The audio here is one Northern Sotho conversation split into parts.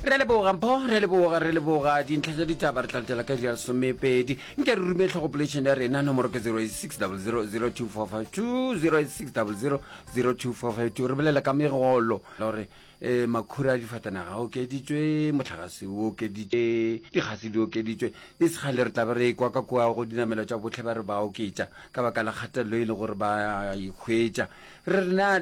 re leboga mpho re leboga re leboga dintlha tša ditaba re tla letela ka ja lesomepedi nke re rume tlhogopolešene ya rena nomoro ke 0600024520 re bolela ka megolo gore um makhura a difatanaga a okeditswe motlhagase o okeditswe dikgase di okeditswe le segale re tlabe re e kwa ka kua go dinamelo tša botlhe ba re ba oketša ka baka la kgatelelo e le gore ba e hwetša re rena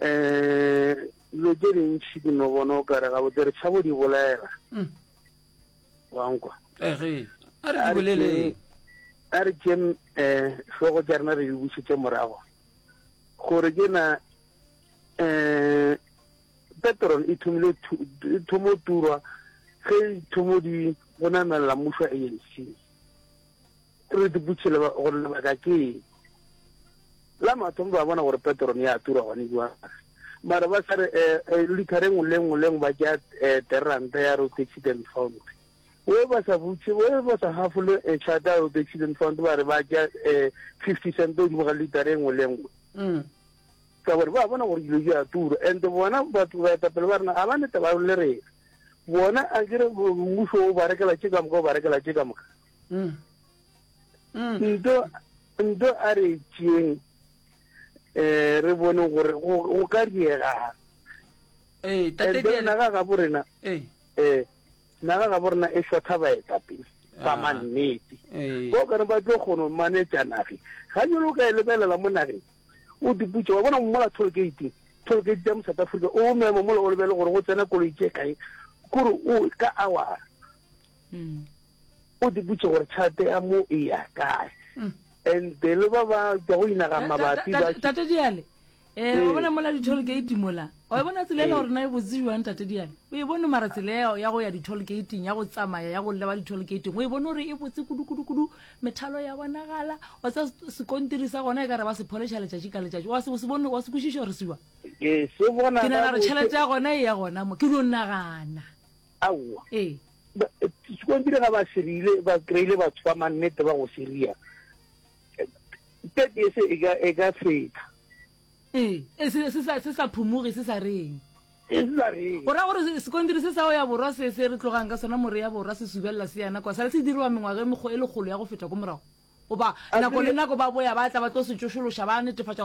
um dilo tše dintšhi ke no bona o kare gabotse re tšhabo di bolela mm. wankwa ege a re di bolele a re tše um eh, hlogo tša rena re di bušetse morago gore ke na um petrol e thomile e thomo turwa ge e thomo di go namelela mmušo a anc Re diputše le gore lebaka ke eng. La mathomo ba bona gore petrol ya tura gone jwale. Mara ba sa re eh, eh, liter engwe le engwe le engwe ba tšea eh, teranta ya road accident fund. We ba sa butše, we ba sa hafole eh, chata ya road accident fund ba re ba tšea eh, 50 cent o dimo ga liter engwe le engwe. Mm. Ka gore ba bona gore dilo di a tura and bona batho ba etapele ba rena ga ba nete ba le rena. bona a kere mmuso o ba rekela tše ka moka o ba rekela tše ka moka mm. Mm. nto nto a re tšeeng um eh, re bone gore go ka diegang eh, naga ga bo rena um eh. naga ga bo rena e shotha baeta pele ba ah. mannete ko kane ba tlo kgono manetša nage ga jalo o ka e lebelela mo nageng O diputše, wa bona, mola toll gate, toll gate tša mo South Africa, o mema mola o lebele gore go tsena koloi tše kae, kore o ka awara. Mm. O diputše gore tšhelete ya mo e ya kae. Mm. And the le ba ba tšwa go inaga mabapi ba. Tate Diale, eh, wa bona mola di-toll gate mola, Wa e bona tsela e la gore na e botse jwang tate diane o e bone mara tsela ya ya go ya di-toll gating ya go tsamaya ya go leba di-toll gating o e bone gore e botse kudu-kudu-kudu methalo ya bonagala wa tsa sekontiri sa gona e ka re ba se pholeša letšatši ka letšatši wa se o se bone wa se kwešiša gore se jwang ke se bona ke nagana gore gabotse. tšhelete ya gona e ya gona mo ke dio nagana aowa ee Ba- eh, sekontiri ga ba serile ba kry-ile batho ba mannete ba go seria tete e se e ka- e ka feta Ee, e, se, se, sa, se sa phumoge, se sa reng. E se sa reng. O ra gore se- sekontiri se sa go ya borwa se se re tlogang ka sona moreya borwa se subelela se yana kwa sale se diriwa mengwaga e mekgo e lekgolo ya go feta ko morago goba A nako le tsebe- nako ba boya ba tla ba tlo se tšošološa ba netefatša gore